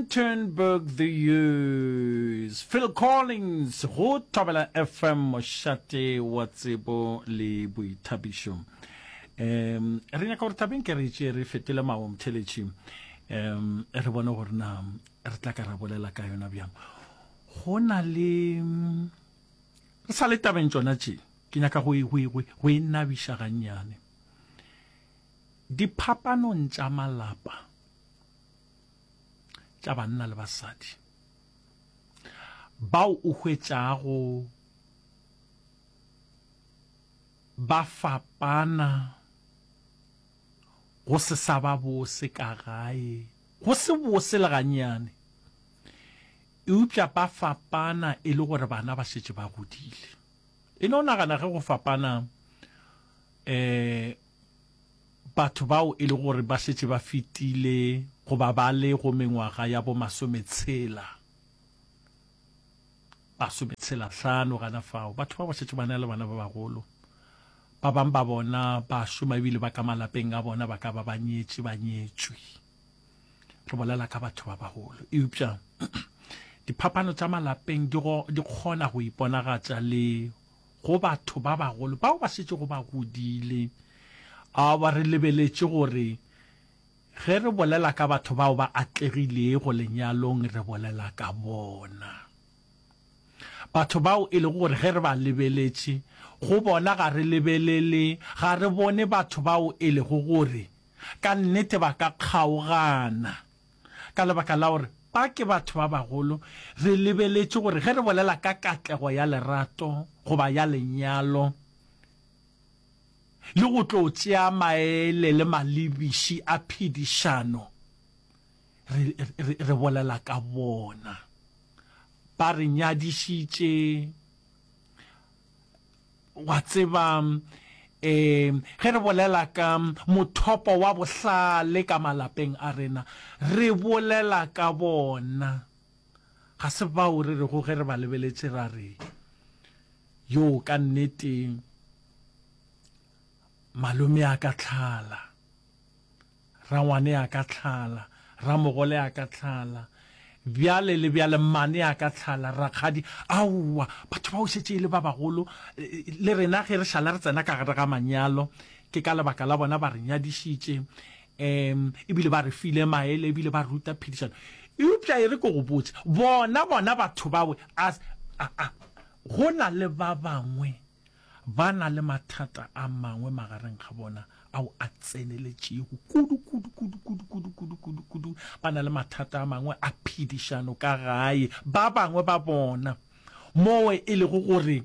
Rustenburg the Years, Phil Collins go Thobela FM mošate wa tsebo le boithabišo. Um, re nyaka gore tabeng ke re tše re fetole maomtheletši um re bone gore na re tla ka ra bolela ka yona bjang go na le re sa le tabeng tsona tše ke nyaka go e nabiša gannyane diphapanong tša malapa tša banna le basadi bao o hwetšago ba fapana go se sa ba bose ka gae go se bose le ganyane eupša ba fapana e le gore bana ba šetše ba godile e ne o nagana ge go fapana eh Batho bao e le gore ba šetše ba fetile goba ba le go mengwaga ya bo masometshela, masometshela hlano gana fao, batho ba ba šetše ba na le bana ba bagolo. Ba bang ba bona ba šoma ebile ba ka malapeng a bona ba ka ba ba nyetše ba nyetšwe. Re bolela ka batho ba bagolo. Eupša diphapano tša malapeng di kgona go iponagatša le go batho ba bagolo bao ba šetšego ba godile. A ba re lebeletše gore ge re bolela ka batho bao ba atlegilego lenyalong re bolela ka bona. Batho bao e lego gore ge re ba lebeletše go bona ga re lebelele ga re bone batho bao e lego gore ka nnete ba ka kgaogana Ka lebaka la gore ba ke batho ba bagolo, re lebeletše gore ge re bolela ka katlego ya lerato goba ya lenyalo le go tlo tšea maele le malebiši a phedišano, re, re, re bolela ka bona. Ba re nyadišitše, Wa tseba, ge re bolela ka mothopo wa bohlale ka malapeng a rena, re bolela ka bona. Ga se bao re rego ge re ba lebeletše ra re, Yoo ka nnete malome-a-ka-tlhala. Rangwane a ka tlhala, ramogole a ka tlhala, bjale le bjale mmane a ka tlhala, rakgadi, aowa, batho bao šetše e le ba bagolo, le rena ge re šala re tsena ka gare ga manyalo, ke ka lebaka la bona ba re nyadišitše, um e bile ba re file maele, e bile ba ruta phedišano. Eupša e re ke go botše, bona bona batho bawe, a, a, a go na le ba bangwe Ba na le mathata a mangwe magareng ga bona ao a tseneletšego kudu, kudu, kudu, kudu, kudu, kudu, kudu, kudu. Ba na le mathata a mangwe a phedišano ka gae. Ba bangwe ba bona, mowe e lego gore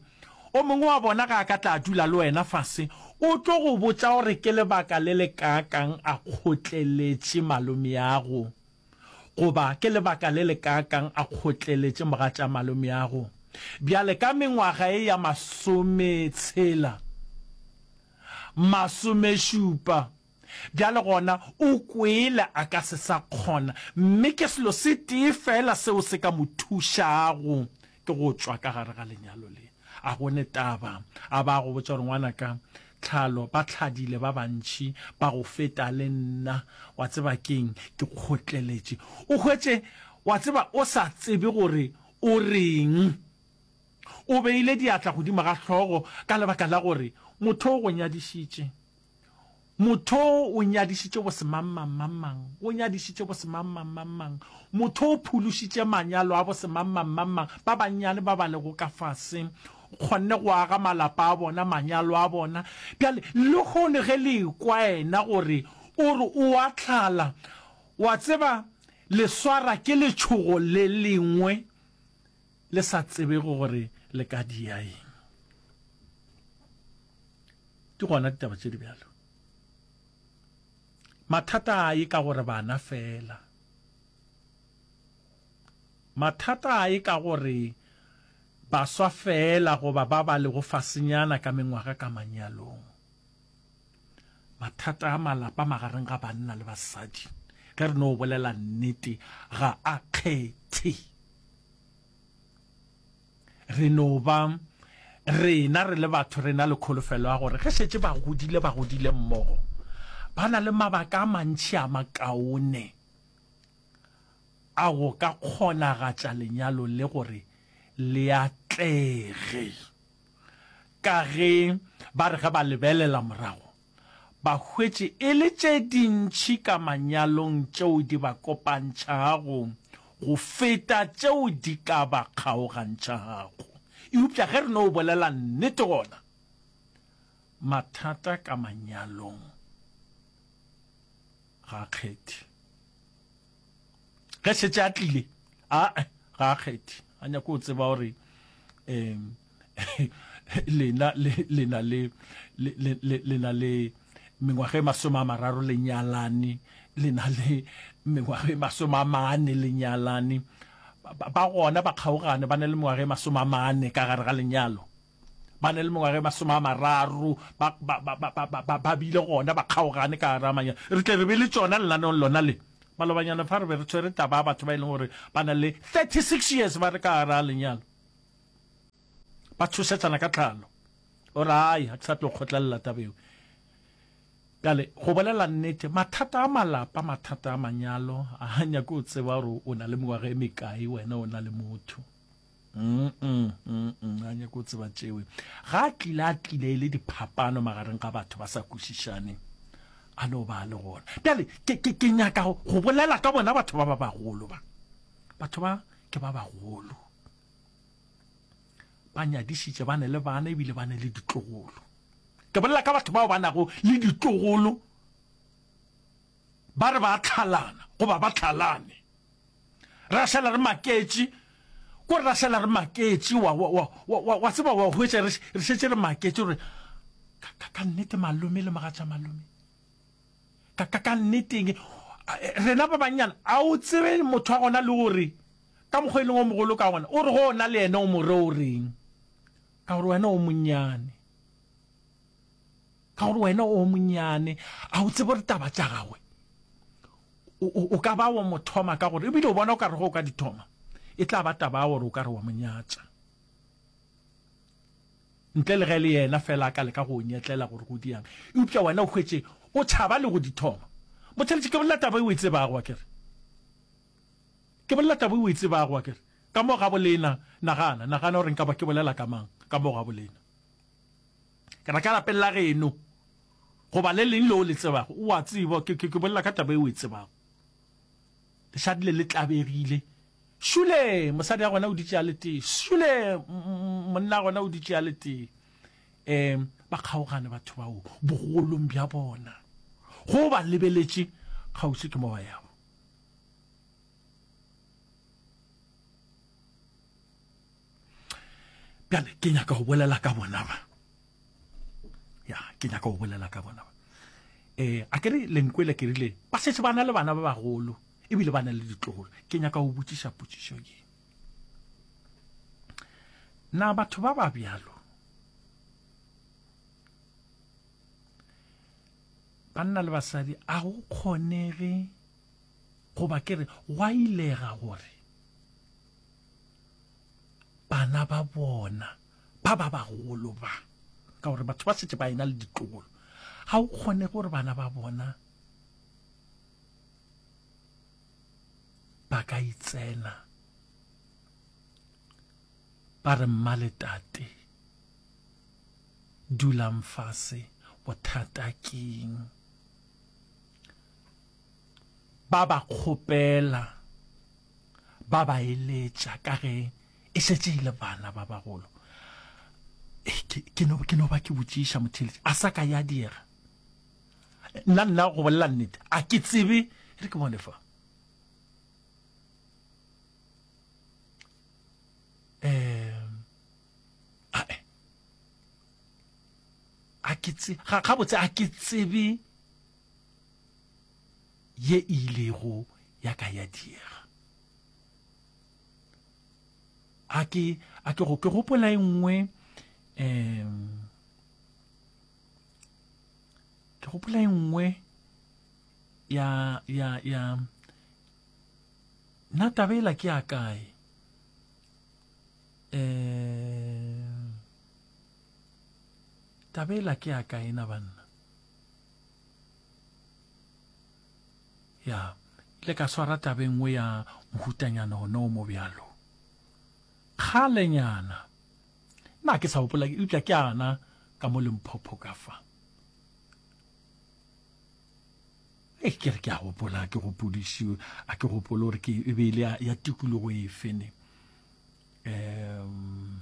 o mongwe wa bona ga a ka tla a dula le wena fase, o tlo go botša gore ke lebaka le le kaakang a kgotleletše malomeago. Goba ke lebaka le lekaakang a kgotleletše mogatša malomeago? Bjale, ka mengwaga ye ya masometshela, masomešupa, bjale gona o kwele a ka se sa kgona, mme ke selo se tee feela seo se ka mo thušago, Ke go tšwa ka gare ga lenyalo le. A go ne taba. A ba a go botša gore, Ngwanaka Tlhalo, ba tlhadile ba bantši ba go feta le nna. Wa tseba ke'ng? Ke kgotleletše. O hwetše, wa tseba, o sa tsebe gore o re'ng. O beile diatla godimo ga hlogo ka lebaka la gore motho o go nyadišitše. Motho o nyadišitše bosemangmangmangmang, o nyadišitše bosemangmangmangmang, motho o phološitše manyalo a bosemangmangmangmang, ba bannyane ba ba lego ka fase kgonne go aga malapa a bona, manyalo a bona. Bjale, lehono ge le ekwa yena gore o re o a tlala, wa tseba, le swara ke letšhogo le lengwe le sa tsebego gore le ka dia eng ke gona ditaba tše di bjalo mathata a ye ka gore bana fela mathata a ye ka gore baswa fela goba ba ba lego fasenyana ka mengwaga ka manyalong mathata a malapa magareng ga banna le basadi ge re no bolela nnete ga a kgethe re no ba rena re le batho re na le kholofelo ya gore ge šetse ba godile ba godile mmogo ba na le mabaka a mantšhi a makaone a go ka kgonagatša lenyalo le gore le atlege Ka ge ba re ge ba lebelela morago ba hwetše e le tše dintši ka manyalong tšeo di ba kopantšhago go feta tšeo di ka ba kgaogantšhago. Eupša ge re no bolela nnete gona mathata ka manyalong ga a kgethe. ge šetše a tlile a ga a kgethe a nyako o tseba gore um lena lena le lena le mengwaga e masome a mararo le nyalane lena le mengwaga e masome a mane le nyalane ba gona ba kgaogane ba ne le mengwaga e masome a mane ka gare ga lenyalo ba ne le mengwaga e masome a mararo ba, ba, ba, ba, ba, ba, ba bile gona ba kgaogane ka gare amanya re tle re be le tsona lenaneong lona le malobanyana fa re be re tshwere taba ya batho ba e leng gore ba na le 36 years ba re ka gare a lenyalo ba tshosetsana ka tlhalo o re ai ga ke sa tlo kgotlelela tabeo kale go bolela nnete mathata a malapa mathata a manyalo a nyake o tseba gore o na le mengwaga e mekae wena o na le motho a nyako o tseba tšewe ga a tlile a tlile e le diphapano magareng ga batho ba sa kwešišane a no ba le gona bjale ke nyaka go bolela ka bona batho ba ba bagolo ba batho ba ke ba bagolo ba nyadišitše ba ne le bana ebile ba ne le ditlogolo ke bolela ka batho bao ba nago le ditlogolo Ba re ba a tlhalana goba ba tlhalane. Re a šala re maketše. Ko re a šala re maketše, wa, wa, wa, wa, wa, wa tseba, wa hwetša re, re šetše re maketše gore, Ka, ka, ka nnete malome le mogatša malome. Ka, ka, ka nneteng. Rena ba bannyana, a o tsebe motho wa gona le gore ka mokgwa e leng o mogolo ka gona, o re go ona le yena o mo re o reng? Ka gore wena o monnyane. Ka gore wena o monnyane, a o tsebe gore taba tša gagwe o ka ba wa mo thoma ka gore ebile o bona o ka re go o ka di thoma e tla ba taba ya gore o ka re wa mo nyatša. Ntle le ge le yena fela a ka leka go o nyetlela gore go diang. Eupša wena o hwetše o tšhaba le go di thoma. Motšheletše ke bolela taba e o e tsebago wa kere. Ke bolela taba e o e tsebago wa kere. Ka mo ga bolena nagana, nagana gore nka ba ke bolela ka mang ka mo ga bolena. ke na ka lapelela geno goba le leng leo le tsebago o a tseba ke ke bolela ka taba e o e tsebago lešadi le le tlabegile šule mosadi ya gona o ditše a le tee šule monna ya gona o ditše a le tee um ba kgaogane batho bao bogolong bja bona go ba lebeletše kgauswi ke mo ba yago bjale ke nyaka go bolela ka bona ba ya ke nyaka go bolela ka bona ba um a kere lenkwele ke rile ba setse ba na le bana ba bagolo ebile ba na le ditlogolo ke nyaka go botšiša potšišo ye na batho ba ba bjalo banna le basadi a go kgonege goba ke re gwa ilega gore bana ba bona ba ba bagolo ba ka gore batho ba setse ba ena le ditlogolo ga o kgone gore bana ba bona ba ka itsena ba re mma le tate dulang fase bothata keng ba ba kgopela, ba ba eletša ka ge e šetše e le bana ba bagolo. Ke no, ke no ba ke botšiša motheeletši, a sa ka ya diega. Nna, nna go bolela nnete, a ke tsebe, e re ke bone fa. Um, ae, a ke tsebe, ga, gabotse a ke tsebe, ye e ilego ya ka ya diega. A ke a ke go ke gopola e nngwe um ke gopola e nngwe ya ya ya na tabela ke a kae um tabela ke a kae na banna ya le ka swara taba e nngwe ya mohutanyana ona o mo bjalo kgalenyana na ke sa gopola eupša ke ana ka mo lemphopho ka fa e ke re ke a gopola ke gopodišiwe a ke gopole gore ke e be e le ya tikologo e fene um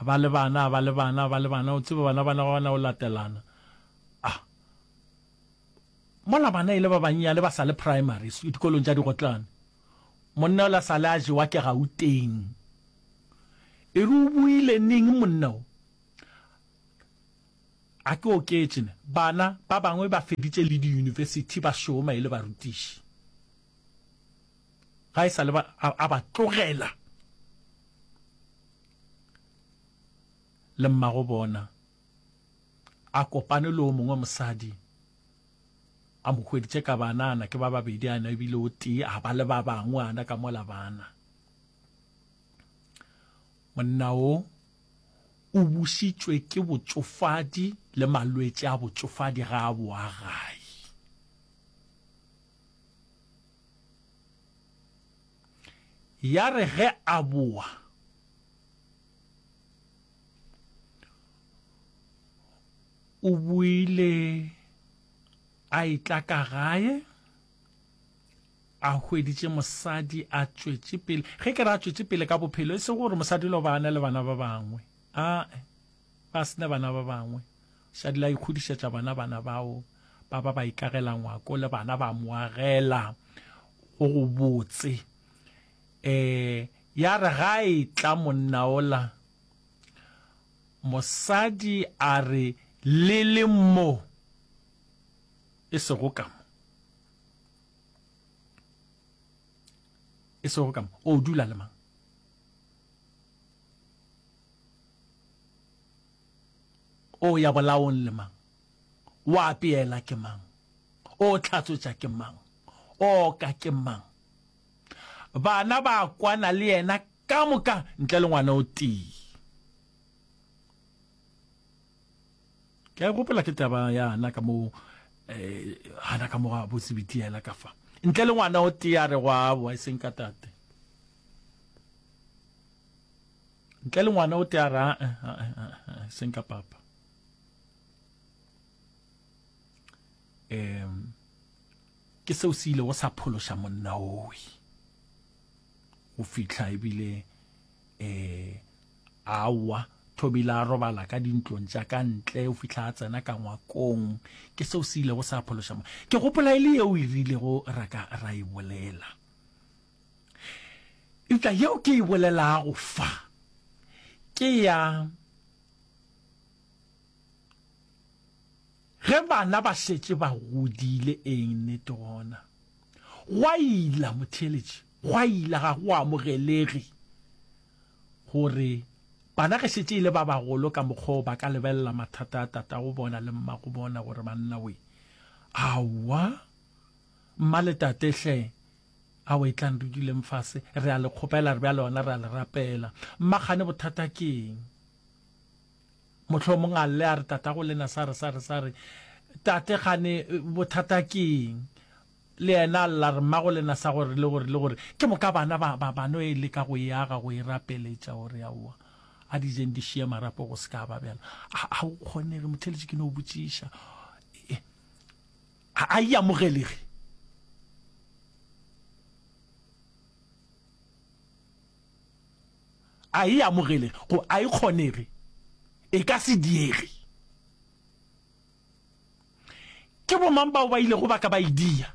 A ba le bana, a ba le bana, a ba le bana, o tseba bana bana ba bana o latelana. A mola bana e le ba bannyane ba sa le primary, dikolong tša digotlane. Monna yola sa le a jewa ke Gauteng. E re o boile neng monna o? A ke oketše ne, bana ba bangwe ba feditše le di-university ba šoma e le barutiši. ga e sa le a ba tlogela le mmago bona a kopane le o mongwe mosadi a mo hweditše ka banana ke ba babedi ana ebile o tee a ba le ba bangwe ana ka mola bana monna o o busitšwe ke botsofadi le malwetši a botsofadi ga a boa gae Ya re ge a boa, o boile a etla ka gae, a hweditše mosadi a tšwetše pele. Ge ke re a tšwetše pele ka bophelo, e se gore mosadi o ile go ba a na le bana ba bangwe, aa. Ge a se na bana ba bangwe, Shadila a ikgodišetša bona bana bao ba ba ba ikagela ngwako le bana ba mo agela go gobotse. E, ya re ga a etla monna ola mosadi a re le le mo e sego ka mo, e sego ka mo, o dula le mang? O ya bolaong le mang? O apeela ke mang? O tlhatswetša ke mang? O oka ke mang? Bana ba kwana le yena ka moka ntle le ngwana o tee. Ke a e gopola ke taba ya Hana ka mo Hana ka mo a botse bitiela ka fa ntle le ngwana o tee a re go a boa e seng ka tate. Ntle le ngwana o tea ra eh, eh, eh, seng ka papa. Em ke seo se ile go sa phološa monna owe go fihla ebile eh awa thobile a robala ka dintlong tša ka ntle o fihla a tsena ka ngwakong ke seo se ile go sa phološa ke gopola e le yeo e rilego ra ka ra e bolela Eupša yeo ke e bolelago fa ke ya ge bana ba šetše ba godile. Eng, nnete gona gwa ila, motheeletši, gwa ila. Ga go amogelege gore bana ge šetše e le ba bagolo ka mokgwa ba ka lebelela mathata a tatago bona le mmago bona gore banna we. Aowa, mma le tate hle, Aowa etlang re duleng fase, re a le kgopela, re bjale gona re a le rapela. Mma kgane bothata ke eng? Mohlomong a lle a re tatago le yena sa re, sa re, sa re, Tate, kgane bothata ke eng? Le yena a lla a re, Mmago le yena sa gore, le gore, le gore, ke moka bana ba, ba, ba no e leka go e aga, go e rapeletša gore, Aowa, a di jeng di šiye marapo go se ka ba bjalo. A, a go kgonege, Motheeletši, ke no botšiša. Ga a e amogele ge. A e amogele go a e kgonege. E ka se diege. Ke bomang bao ba ilego ba ka ba e dia?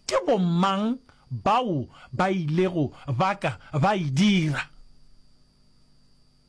Ke bomang bao ba ilego ba ka ba e dira?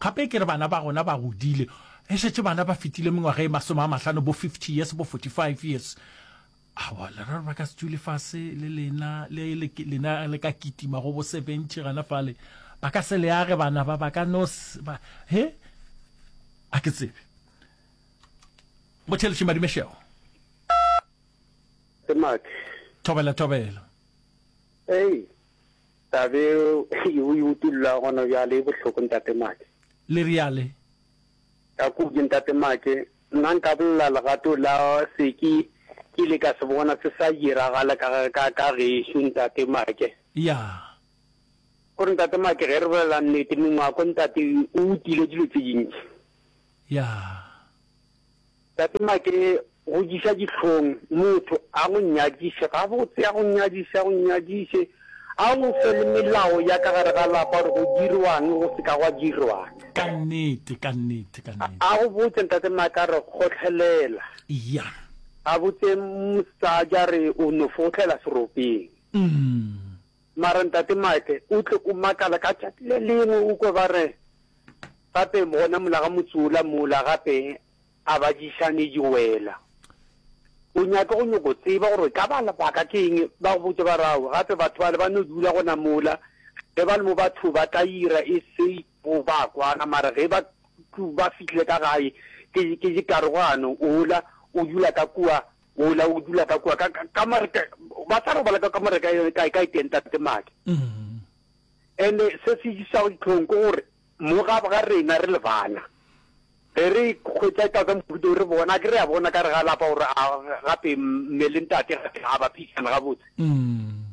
Gape ke re bana ba gona ba godile, e šetše bana ba fetile mengwaga e masome a mahlano, bo fifty years, bo forty five years. Aowa, leraro ba ka se dule fase le lena, le lena le ka kitima go bo seventy gana fale. Ba ka se le age bana ba, ba ka no ba, he? A ke tsebe. Motheletši Madimešego. Ke Max. Thobela, thobela. Hei! Taba e o e utollago gona bjale e bohloko, Ntate Make. Le reale? Ka kudu, Ntate Make. Nna nka bolela legato la se ke ile ka se bona se sa diragala ka gešo, Ntate Make. Ya. Gore, Ntate Make, ge re bolela nnete, mengwako, Ntate, o utile dilo tše dintši. Ya. Tate Make, go diša dihlong, motho a go nyadiše gabotse, a go nyadiše, a go nyadiše, a go fe le melao ya ka gare ga lapa gore go dirwang, go se ka gwa dirwang. Ka nnete, ka nnete, ka nnete. A go botše, Ntate Make, a re kgohlelela. Eya. A botše mosadi a re o no fo kgohlelela seropeng. Umm. Mara Ntate Mike, o tle o makala ka tšatši le lengwe o kwe ba re, Gape gona mola ga motse wola mola gape a badišane di wela. O nyake go nyoko tseba gore ka ba lebaka ke eng, ba go botše ba re, Aowe, gape batho bale ba no dula gona mola, ge ba le mo batho ba tla ira e sey bo ba kwana, mara ge ba ba fihlile ka gae ke ke dikarogano, wola o dula ka kua Wola o dula ka kua ka kamare ka ba sa robala ka kamare ka yone ka ka itenta te madi. Mm. And se se isa go ditlhong go gore mo ga ga rena re le bana. Re re khwetsa ka ka mputo re bona ke re a bona ka re ga lapa gore a gape mmele ntate ga ba phishana ga botse. Mm.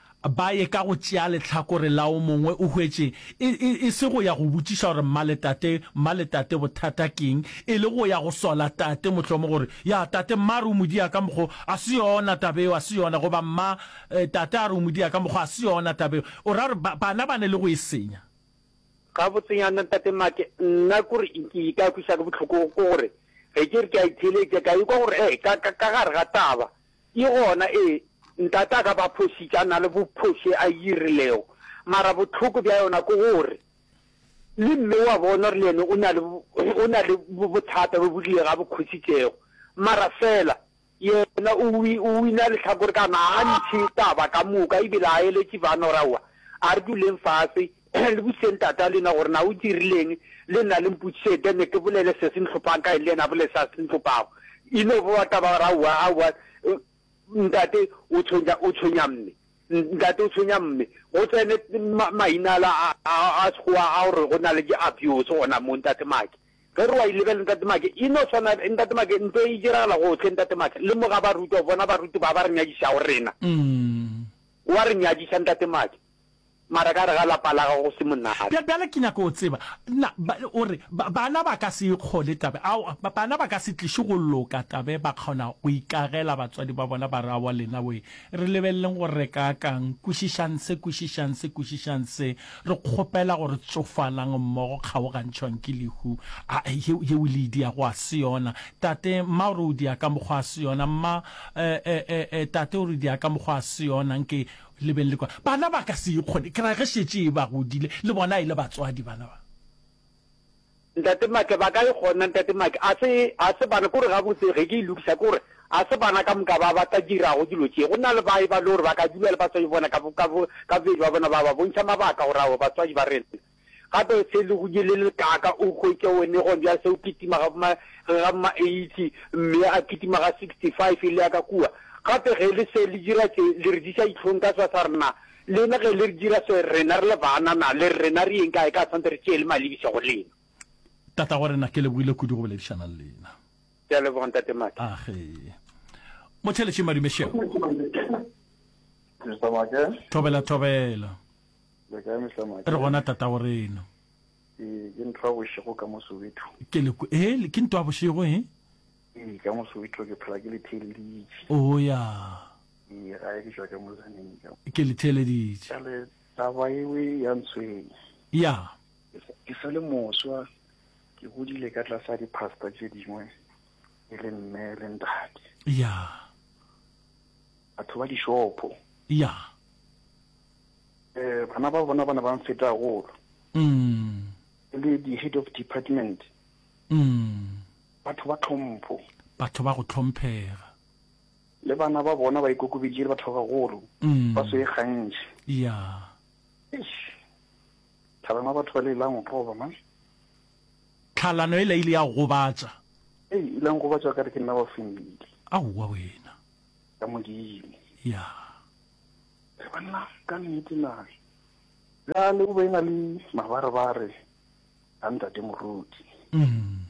Ba ye ka go tšea lehlakore la o mongwe, o hwetše, e, e, e se go ya go botšiša gore mma le tate, mma le tate bothata ke'ng, e le go ya go sola tate, mohlomong gore, Ya, tate, mma a re o mo dia ka mokgo, a se yona taba eo, a se yona, goba mma, e, tate a re o mo dia ka mokgo, a se yona taba eo. O ra gore ba, bana ba ne le go e senya. Gabotsenyana, Tate Mark, nna k'ore ke ka kwiša ke bohloko, ke gore ge ke re ke a itheeletša, ka ikwa gore, ee, ka, ka, ka gare ga taba, Ke gona, ee, Ntate a ka ba phošitša, a na le bophoše a yi rilego, mara bohloko bja yona ke gore le mme o a bona gore le yena o na le, o na le bothata bjo bo rile ga bo khositšego, mara feela yena o, o wina lehlakore ka gona, ga a ntšhe taba ka moka, e bile ga a eletše bana gore aowa, a re duleng fase, Le botšeng Tata le yena gore na o dirileng, le nna le mpotšiše then ke bolele se se ntlhophang ka ene le yena a bolele se a se ntlhophago. E no bowa taba ya gore aowa, aowa, Ntate o tshwenya, o tshwenya Mme, Ntate o tshwenya Mme. Go tsene ma, maina ala a, a, a Sekgowa a gore go na le di-abuse gona mo, Ntate Maake. Ge re wa e lebelela Ntate Maake, e no swana, Ntate Maake, ntwa e diragala gohle, Ntate Maake. Le mo ga baruti, wa bona baruti ba ba re nyadišago rena. Wa re nyadiša Ntate Maake. Mara ka gare ga lapa la gago go se monate. Bja, bjale ke nyaka go tseba, na, ba, o re, ba, bana ba ka se e kgole taba, aowa, ba, bana ba ka se tliše go loka taba ye, ba kgona go ikagela batswadi ba bona, ba re, aowa lena we, re lebeleleng gore re ka ka'ng, kwešišang se, kwešišang se, kwešišang se, re kgopela gore tsofalang mmogo, kgaogantšhwang ke lehu, a, ye, ye o le e diago ga se yona, tate, mma o re o dia ka mokgwa a se yona, mma, e, e, e, e, tate o re o dia ka mokgwa a se yona, nke. Le beng le kwa. Bana ba ka se e kgone, ke ra ge šetše e ba godile, le bona e le batswadi, bana ba. Ntate Matle, ba ka e kgona, Ntate Matle. A se, a se bana, ke gore gabotse, ge ke e lokiša, ke gore a se bana ka moka ba ba ka dirago dilo tše. Go na le ba e ba le gore ba ka dula le batswadi bona ka bo, ka bo, ka bobedi ba bona, ba ba bontšha mabaka gore aowa, batswadi ba rena. Gape se le go nyele le kaaka o hwetše one gone bjale se o kitima ga boma, ga boma 80, mme a kitima ga 65 e le ya ka kua. Gape ge le se le dira tše, le re diša dihlong ka swa sa rena. Lena ge le re dira se, rena re le baanana, le re rena re yeng kae ka swantse re tšee le malebiša go lena. Tatagwerena, ke lebogile kudu go boledišana le lena. Ke a leboga, Ntate Maake. Age. Motheletši Madume Šego. Thobela, thobela. Le kae Mr. Maake? Re gona tatago reno. Ee, ke ntho ya bošego ka mo Soweto. Ke le kwe- eh, le- ke ntwa bošego eh? Ee, ka mo Soweto ke phela ke le theeleditše. Oh ya, Ee, gae ke tšwa ka mo Zaneng ka. ke le theeleditše. Jale taba ewe ya ntshwenya. Ya, Ke sa- Ke sa le moswa, ke godile ka tlasa dipasta tše dingwe, e le mme le ntate. ya, Batho ba dišopho. ya. um bana ba bona ba ne ba mfeta golo mm. e le di-head of department mm. batho ba tlhompho batho ba go tlhomphega le bana ba bona ba ikokobeditše le batho ba bagolo mm. ba se e gantši ya tlhalano batho ba le ilang go goba man tlhalano e la ile ya gobatsa e ilang gobatsa ka re ke nna ba fendile aowa wena ka modimo ya yeah. Re banna ka nnete na? Bjale o be e na le mabarebare a ntate Morudi. Mm.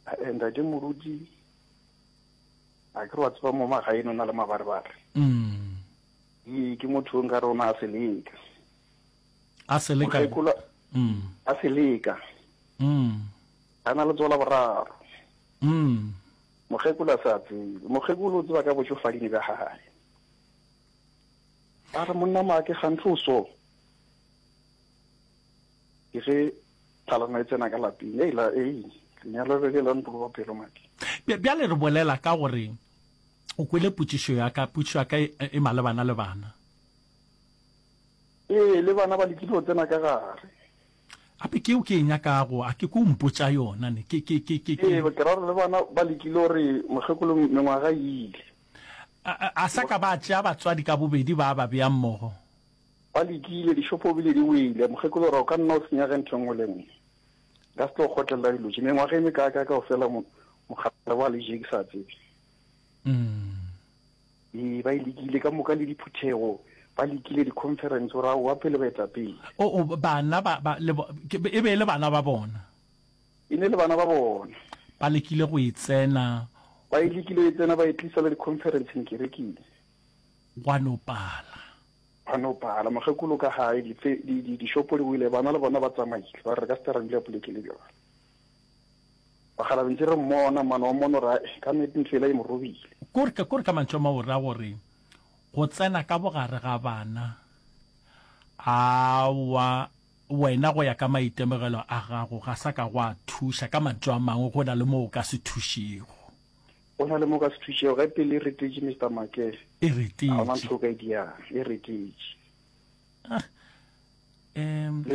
Eh, ntate Morudi, a ke re wa tseba mo magaeno na le mabarebare. Mm. Ee, ke motho o nka re o na a seleka. A seleka? Mm. A seleka. Mm. A na le tsola boraro. Mm. Mokgekolo a sa tsebe. Mokgekolo o tseba ka bošofading ka gae. A re, Monna Maake, gantli o so ke ge phalana e tsena ka lapeng. Ei, la, ei, lenyalo le le la ntoloba pelo, Maake. Bj- Bjale re bolela ka gore o kwele potšišo ya ka, potšišo ya ka e, e malebana le bana. Ee, le bana ba lekile go tsena ka gare. Gape ke yeo ke e nyakago, a ke ko o mpotša yona ne, ke, ke, ke, ke, ke. Ee, ke ra gore le bana ba lekile gore mokgekolo mengwaga e ile. A sa ka ba tšea batswadi ka bobedi ba ba bea mmogo? Ba lekile, dixopo ebile di wele. Mokgekolo ra, o ka nna o senyage ntho nngwe le nngwe. Nka se tlo kgotlelela dilo tše. Mengwaga e mekaakae ka go fela mokgale wa leje ke sa tsebe. Ee, ba e lekile ka moka le diphuthego ba lekile di-conference gore ao wa pele baetapele. O bana e be e le bana ba bona. E ne le bana ba bona. Ba lekile go e tsena. Ba e lekile e tsena, ba e tlisa le dikhonferenseng kerekeng. Gwa no pala. Gwa no pala. Mokgekolo ka gae, dife, di, di, dishopo di wile, bana le bona ba tsamaile, ba re re ka se tla ra dula poleke le bjona. Bakgalabje ntse re mmona, mane wa mmona o ra, eh, ka nnete ntlo yela e mo robile. Ko re, ko re ka mantšu a mangwe o ra gore, go tsena ka bogare ga bana, aowa, Wena go ya ka maitemogelo a gago ga sa ka gwa thuša, ka mantšu a mangwe go na le mo o ka se thušego. Go na le mo o ka se thušego, ge pelo e retetše Mister Maake, E retetše. ga ona ntho o ka e dirang, e retetše. Ah. Um,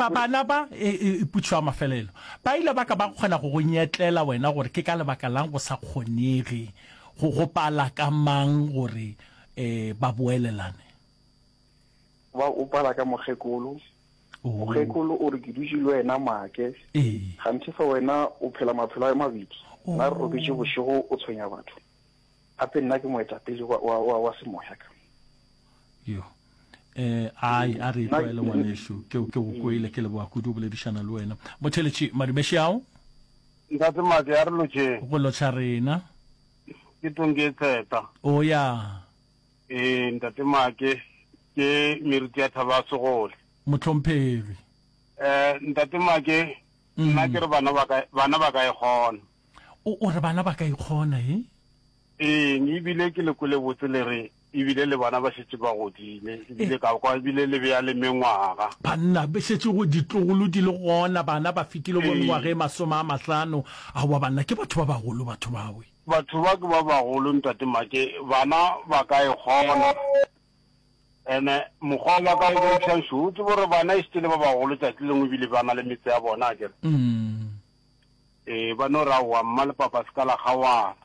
bana ba, e, e, e putšo ya mafelelo, ba ile ba ka ba kgona go go nyetlela wena gore ke ka lebaka lang go sa kgonege go gopala ka mang gore um ba boelelane. ba o pala ka mokgekolo oh. mokgekolo o re ke dutše le wena maake ganthe fa wena o phela maphelo a mabedi oh. na re robetše bošego o tshwenya batho gape nna ke moetapele wa, wa, wa, wa semoya ka yo eh ai a re tlwaele ngwaneso ke ke go kwele ke leboa kudu boledišana le wena motheletše madimeše ao nka se make ya re lotšeng go lotšha rena ke tong ke tseta o ya Ee, Ntate Maake, ke meriti ya thaba ya segole. Mohlomphegwi. Eh, Ntate Maake, nna ke re bana ba ka, bana ba ka e kgona. O, o re bana ba ka e kgona, he? Eng, ebile ke le kwele botse le re, ebile le bana ba šetše ba godile, ebile ka kwa ebile le bea le mengwaga. Banna, be šetše go ditlogolo di le gona, bana ba fetile bo mengwaga e masome a mahlano. Aowa, banna, ke batho ba bagolo batho bawe. Batho ba ke ba bagolo, Ntate Make, bana ba ka e kgona. Ene mokgwa o ba ka o bontšhang šo, o tsebe gore bana e šete le ba bagolo tšatši lengwe ebile ba na le metse ya bona, a kere. Ee, ba no ra wa mma le papa se ka la kgawana.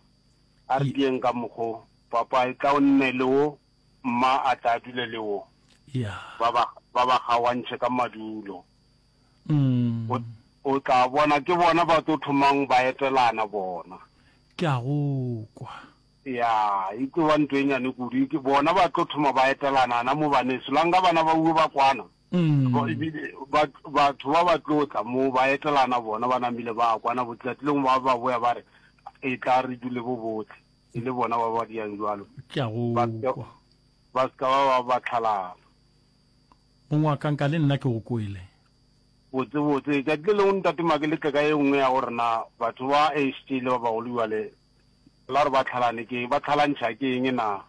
A re dieng ka mokgo, papa e tla o nne le wo, mma a tla a dule le wo. Ba ba kgawantšhe ka madulo. O, o tla bona, ke bona ba tlo thomang ba etelana bona. Ke a go kwa. Ya, e tlo ba nto e nyane kudu. E ke bona ba tlo thoma ba etelana na mo baneso. La nga bana ba uwe ba kwana, ba, ebile ba, batho ba ba tlo tla mo ba etelana bona ba namile ba kwana, botlati lengwe ba ba boya ba re, E tla re dule bo botle. E le bona ba ba diyang jwalo. Ke a go Ba seka, kwa. ba seka ba ba ba tlhalana. Mong wa ka, nka le nna ke go kwele. Botsebotse, letšatši le lengwe Ntate Make le tle ka e nngwe ya go rena. Batho ba HJ le ba bagolo bjale, la re ba tlhalane ke eng? Ba tlhalantšha ke eng na?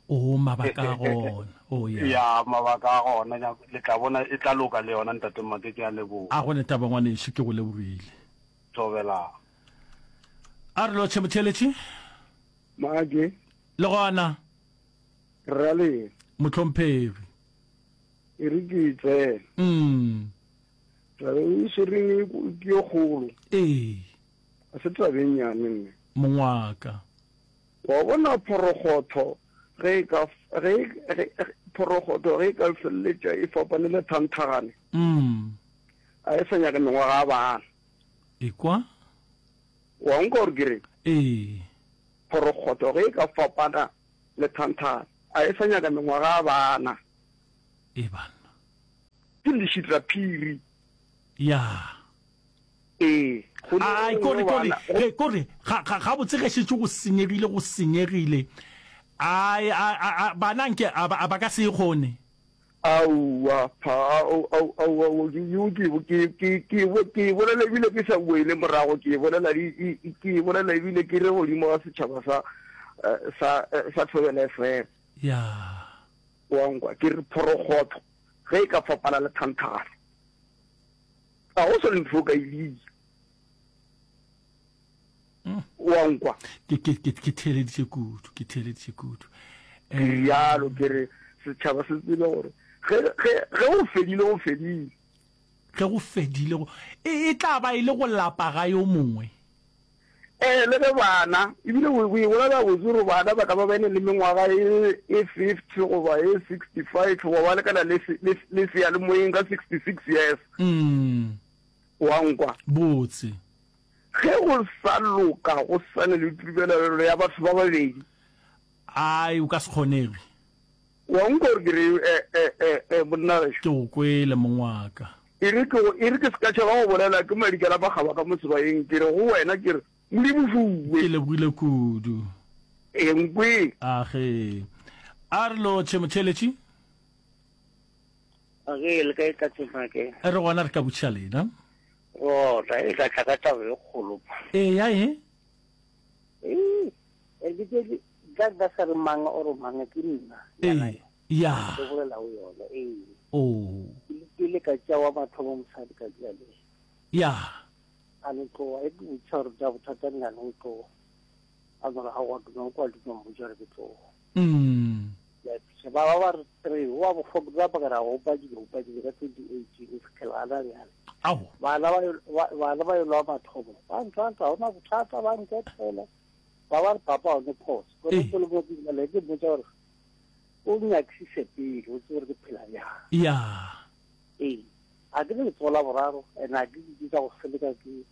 Oo, mabaka a gona. Oo, ya. Ya, mabaka a gona. Ya, le tla bona e tla loka le yona, Ntate Make. Ke a leboga. A go ne taba, ngwanešu. Ke go lebogile. Thobelang. A re lotšhe, motheeletši. Make. Le gona. Ra le. Motlhomphegi. E re ke tsena. Mm. Ra be o swereng e ke yo kgolo. Ee. A se tabeng yane nne. Mongwaka. Wa bona phorogotho ge e ka ge phorogotho ge e ka feleletša e fapane le thanthagane. Mm. A e sa nyaka mengwaga a bana. Ekwa. Wa nka gore ke reng? Ee. Phorokgotho ge e ka fapana le thanthana, a e sa nyaka mengwaga a bana. E banna. Ke lešitaphiri. Ya. Ee, go ne Ai, go kore, ne kore, bana. Go- e, kore, ga, ga, ga botse ge šetše go senyegile, go senyegile. Ai, a, a, a, bana nke, a, ba- a ba ka se e kgone. Aowa, pha, ao, ao, ao, ao, ke, ke, ke, ke, ke, bo, ke e bolela ebile ke sa boele morago, ke e bolela, e, e, e, ke e bolela ebile ke re godimo ga setšhaba sa, eh, sa, eh, sa Thobela FM. Ya. Wa nkwa, ke re phorokgotho ge e ka fapana le thanthana, ga go selo ntho o ka e bitsa. wa nkwa ke ke ke ke theeleditše kudu ke theeleditše kudu ke eh, rialo ke re setšhaba se tsebe gore ge ge ge o fedile o fedile ge go fedile go e e tla ba e le go lapa ga yo mongwe ee eh, le ge bana ebile o e bolela botse gore bana ba ka ba bene le mengwaga e, e fifty goba e sixty five goba ba lekana le seya le moyeng ka sixty six years mm. O a nkwa? Botse. Ge go sa loka go sane le tubelelo ya batho ba babedi. Ai, o ka se kgonege. O a nkwa gore ke re, e, e, e, e, monna gešo? Ke go kwele, mong wa ka. E re ke go, e re ke se ka tšhaba go bolela, ke madi ka napa kgaba ka mo sebayeng, ke re go wena, ke re, Modimo fuwe. Ke lebogile kudu. Enkwe. Age. A re lo tšhe, motheeletši. Okay, le ka e tla tsena ke. E re gona re ka butšha lena. Oh, ta e ka tla ka taba e kgolo. E ya e. E, e ke ke ka ba sa re mang o re mang ke nna. E, ya. Ke bolela o yona. E. Oh. Ke le ka tša wa batho ba mosadi ka tša le. Ya. A le tloa e ke butšha re tša bothata nna le tloa. A gore a go tloa kwa le tloa butšha re tloa. Umm. Let's ba ba ba re three go ba bofogo ba ba ra go ba dilo ba dilo ka 2018 se kelana bjale. Awo. Bana ba bana ba yelwa mathomo. Ba ntwa ntwa hona bothata ba ntwa tsela. Ba ba papa o ne phoso. Go ne go le mo ke le ke botsa gore o nyaksise pele o tsere ke phela ya. Ya. Ee. A ke le tsola boraro and a ke ke tsa go seleka ke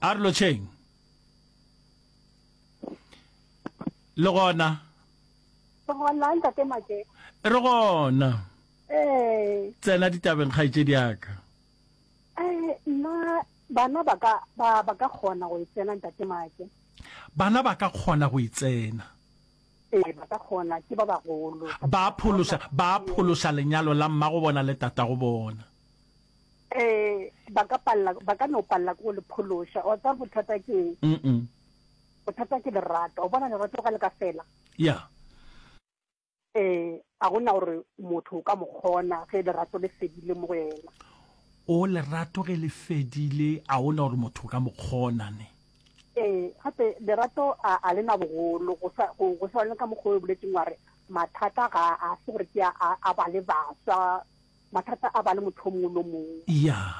a re lotšheng le gona gona ntate make re gona ee tsena ditabeng kgaitšedi yaka eh nna bana ba ka ba ba ka kgona go itsena ntate make bana ba ka kgona go itsena ee ba ka kgona ke ba bagolo ba pholosa ba pholosa lenyalo la mmago bona le tatago bona eh ba ka palla ba ka no palla go le phološa o tsa bothata ke mm bothata ke lerato o bona lerato ga le ka fela ya eh a gona gore motho o ka mo kgona ge lerato le fedile mo go yena o lerato ge le fedile a gona gore motho o ka mo kgona ne eh gape lerato a a le na bogolo go sa go go sa le ka mokgwa o boletseng wa re mathata ga a se gore ke a a- a ba le baswa Mathata a ba le motho o mongwe lo mongwe. Yeah.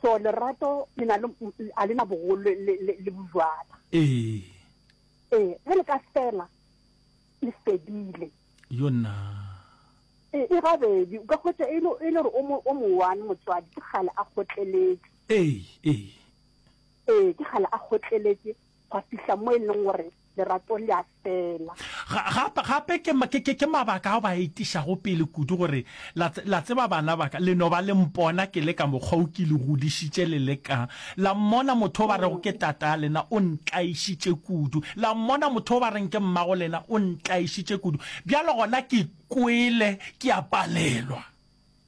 So lerato le na le a le na bogolo le le le, le bojwala. Ee. Ee, ge le ka fela le fedile. Yona. E e gabedi, o ka kgwetsa e le e le gore o mo o mo one motswadi ke gale a kgotleletse. Ee, ee. Ee, ke gale a kgotleletse gwa fihla mo e leng gore lerato le a fela. Gape ke mabaka ao ba a etišago pele kudu gore, La tseba bana ba ka, le no ba le mpona ke le ka mokgwa o ke le godišitše le le ka. La mmona motho o ba rego ke tataa lena o ntlaišitše kudu. La mmona motho o ba reng ke mmago lena o ntlaišitše kudu. Bjale gona ke kwele ke a palelwa.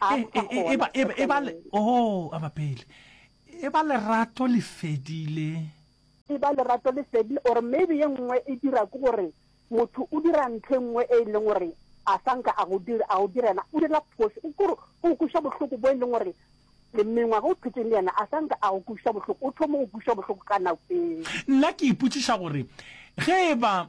A re ka gona, eba, eba, eba le, oh, a ba pele. Eba lerato le fedile. Eba lerato le fedile, or maybe ye nngwe e dira ke gore motho o dira ntho e nngwe e e leng gore a sa nka a go dira, a go dira yena, o dira phoso. O kore o kuša bohloko bo e leng gore le mengwaga o phetseng le yena a sa nka a go kuša bohloko, o thoma go kuša bohloko ka nako e. Nna ke ipotšiša gore ge e ba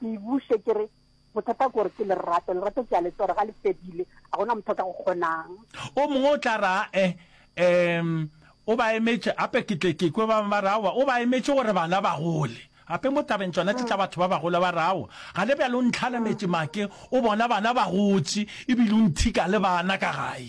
Ke e buše ke re, Bothata ke gore ke lerato, lerato ke a le tseba gore ga le fedile, ga go na motho a ka go kgonang. O mongwe o tla ra, E, em, o ba emetše, gape ke tle ke kwe ba bangwe ba re, Aowa, o ba emetše gore bana ba gole. Gape mo tabeng tšona tše tša batho ba bagolo ba re, Aowa, gane bjale o ntlhalemetše make, o bona bana ba gotše e bile o nthika le bana ka gae.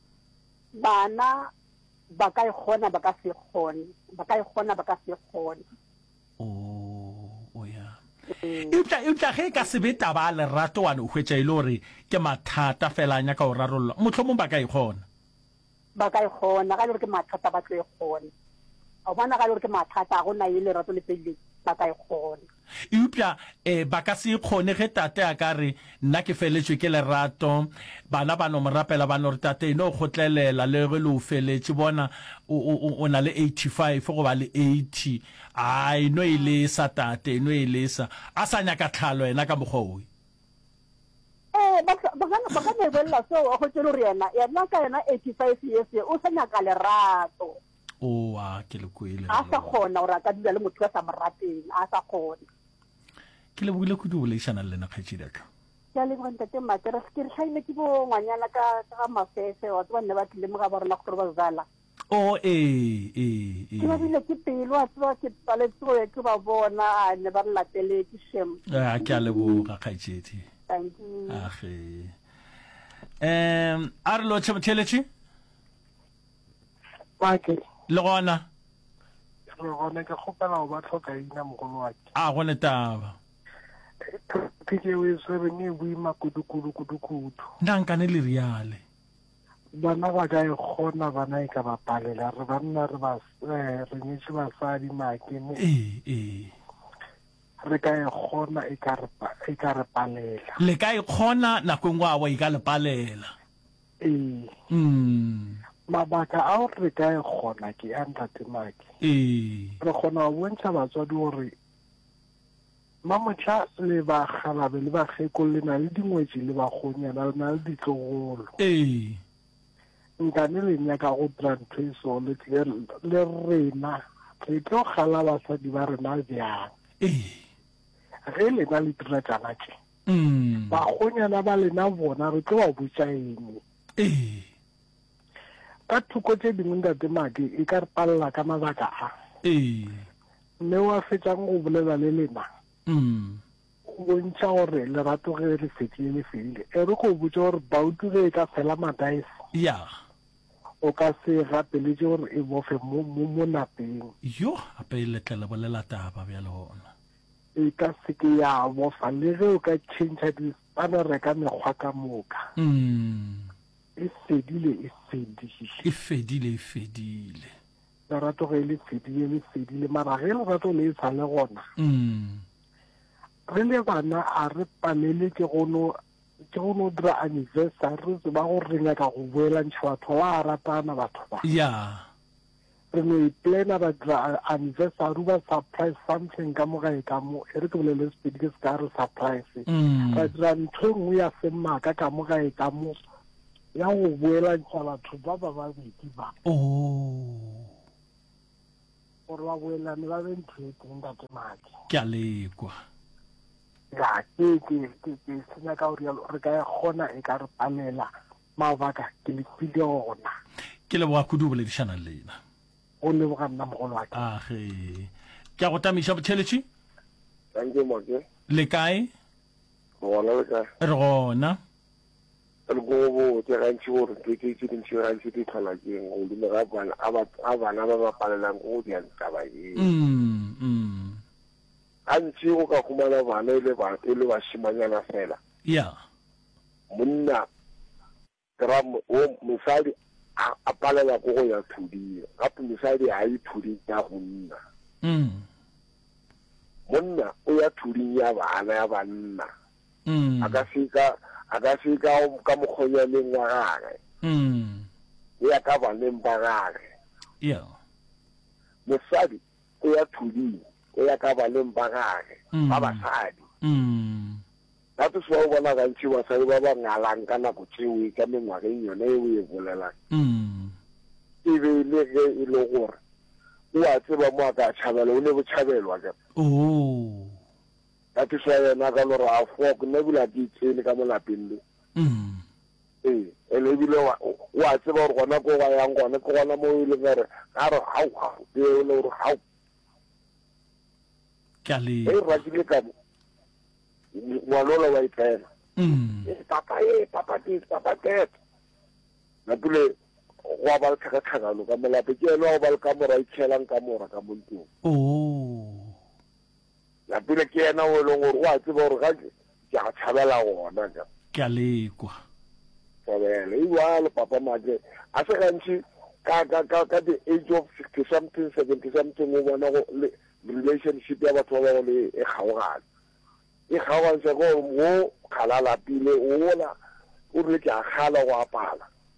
Bana ba ka e kgona, ba ka se kgone, ba ka e kgona, ba ka se kgone. Oh, o ya. Eupša, eupša ge e ka se be taba ya lerato, wa no hwetša e le gore ke mathata fela a nyaka go rarollwa, mohlomong ba ka e kgona. Ba ka e kgona, ga e le gore ke mathata, ba tlo e kgona. A o bona, ga e le gore ke mathata, ga go na ye lerato le felileng, ba ka e kgona. Eupša e, ba ka se e kgone. Ge tate a ka re, Nna ke feletšwe ke lerato, bana ba no mo rapela, ba no re, Tate, e no kgotlelela le ge le o feletše. Bona, o, o, o, o na le eighty-five goba le eighty. A, e no e lesa, tate, e no e lesa. A sa nyaka tlhalo yena ka mokgwa wo. Ee, ba ka, ba ka, ba ka mo bolelela seo, a hwetše e le gore yena, yena ka yena eighty-five years ye, o sa nyaka lerato. oa ke le kwele a sa kgona gore a ka dula le motho wa sa mo rateng a sa kgona ke lebogile kudu boledišana le lena kgaetšedi aka ke a leboga ntate mate re ke re tlhaile ke bo ngwanyana ka ga mafefe wa tseba nne ba tlile mo ga ba rona gore ba zala o oh, ee ee, ee. ke ba bile ke pelo a tseba ke paletse go ya ke ba bona a ne ba re lateletse shem a ke a leboga kgaetšedi thank you age um a re lo tšheletše Make. Le gona. Re gona ke kgopela go ba tlhoka ina mogolo wa ke. A go ne taba. Ke ke we swere ne bui makudu kudu kudu kudu. Nda nka ne le riale. Bana ba ka e gona bana e ka ba palela re banna re ba eh, re nyetše basadi make ne. Eh eh. Re ka e gona e ka re e ka re palela. Le ka e gona nakong wa wa e ka le palela. Ee. Mm. Mabaka ao re ka e kgona ke a ntate Maki. Ee. Re kgona go bontšha batswadi gore mamotlha le ba galabe le bakgekolo le na le dingwetši le bagonyana le na le ditlogolo. Ee. Nkane le nyaka go dira ntho e so le rena re tlo gala basadi ba rena bjang. Ee. Ge lena le dira tšana tše. mm. bagonyana ba lena bona re tlo ba botša eng ee ka thoko tše dingwe ntate madi e ka re palela ka mabaka a ee mme wa fetšang go bolela le lena mm. o bontšha gore lerato ge le fedile le fedile e re go botsa gore bautu ge e ka fela madaese ya o ka se gapeletše gore e bofe mo mo- mo napeng yo gape e letlele bolela taba bjale gona e ka se ke ya bofa le ge o ka tšhentšha dispanere ka mekgwa ka moka e fedile e fedile e fedile e fedile lerato ge le fedile le fedile mara ge lerato le e sa le gona re le bana a re palele ke gono ke go no dira anniversary re tseba go re nyaka go boelantšha batho ba ratana batho ba ya Re no e plana ra dira anniversary o ba surprise something ka mo gae ka mo e re ke bolele sepedi ke se ka re surprise mm. ra dira ntho e nngwe ya semaka ka mo gae ka mo ya go boelantšha batho ba ba babedi ba oh. gore ba boelane ba be ntho e teng ka temake ke a lekwa ya ke ke ke ke senya ka gore re ka e kgona e ka re palela Mabaka ke le file ona. Ke leboga kudu go boledišana le lena. Go leboga nna mogolo wa ka. Age. Ke a go tamiša botheletši. Thank you Moke. Le kae? Re gona le kae? Re gona. Re go botse gantši gore ntho tse tse dintši gantši di tlhola ke eng godimo ga bana a ba a bana ba ba palelang go di taba e. Mm. Mm. Gantši o ka khumana bana ile ba ile ba shimanyana fela. Yeah. Monna gra wo mosadi a, a palela ko go ya thuding. Gape mosadi a ye thuding ya go nna. Mm. Monna o ya thuding ya bana ya banna. Mm. A ka se ka a ka se ka ka mokgonywaneng wa gage. Mm. Ya ka baneng ba gage. Yeah. Mosadi o ya thuding, o ya ka baneng ba gage ba basadi. That is why o bona gantši basadi ba ba ngalang ka nako tšeo e ka mengwageng yone e o e bolelang, e be e le ge e le gore o a tseba mo a ka tšhabela, o ne botšhabelo akere. That is why yena a ka no re, Aowa, ke nna ebile a ke itsene ka mo lapeng le. ee ene ebile wa wa tseba gore gona ko ba yang gone ke gona mo e leng gore ga re ga ga e le gore ga ka le e ratile ka ngwanola wa itlela mm. eh, papa e eh, papa ke papa tet napule go ba le tlhakatlhakano ka molape ke ene wa go ba le ka mora itšhelang ka mora ka montong oh. Ya pele ke yena o e leng gore o a tseba gore ga ke ke a tshabela gona ka. Ke a lekwa. Tshabela. E bjalo papa Matle. A se gantši ka ka ka ka the age of 60 something 70 something o bona go le relationship ya batho ba ba go le e kgaogana. E kgaogantšha gore wo kgalala pele o la o re ke a kgala go a pala.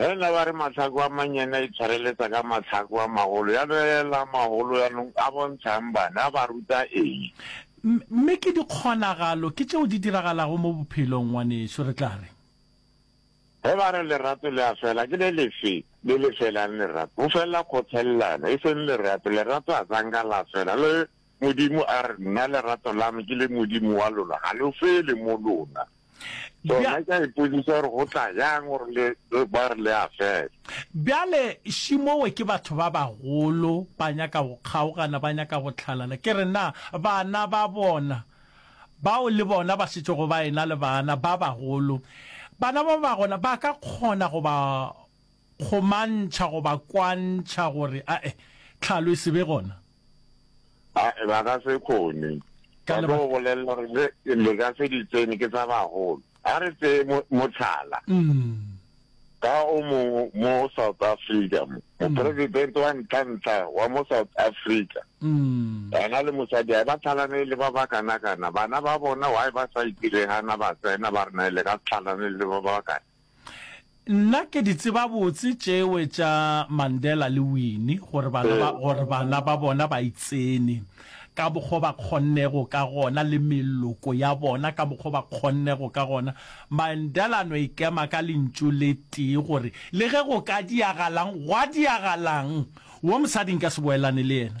Ge na ba re mahlaku a mannyane a itshwareletsa ka mahlaku a magolo, ya no ela a magolo yanong a bontshang bana, a ba ruta eng? Mme ke dikgonagalo, ke tšeo di diragalago mo bophelong, ngwanešu. Re tla re. Ge ba re lerato le a fela, ke le lefe le le felang lerato? Go felela kgothelelano, e seng lerato. Lerato a ka nka la fela. Le Modimo a re, Nna lerato la me ke le Modimo wa lona, ga lo fele mo lona. So nna ke a ipotsisa gore go tla yang gore le ba re le a fela. Bjale Shimowe ke batho ba bagolo, ba nyaka go kgaogana, ba nyaka go tlhalana. Ke re, Na bana ba bona, bao le bona ba šetšego ba ena le bana ba bagolo, bana ba ba gona ba ka kgona go ba kgomantšha goba kwantšha gore ae, tlhalo e se be gona. Ae, ba ka se kgone. Ka Ba tlo lebaka. go bolelela gore le, le ka se di tsene, ke tsa bagolo. A re tseye mo, motlhala. Mm. Ka o mongwe mo South Africa mo, mopresidente wa ntlha-ntlha wa mo South Africa, Mm. ena le mosadi ae ba tlhalane le ba ba kana-kana. Bana ba bona why ba sa itirehana ba tsena ba re na le ka se tlhalane le ba ba kana. Nna ke di tseba botse tšewe tša Mandela le Winnie gore bana ba gore bana ba bona ba itsene ka bokgo ba kgonnego ka gona le meloko ya bona ka bokgo ba kgonnego ka gona. Mandela no ikema ka lentšu le tee gore le ge go ka diagalang gwa diagalang wo mosadi nka se boelane le yena.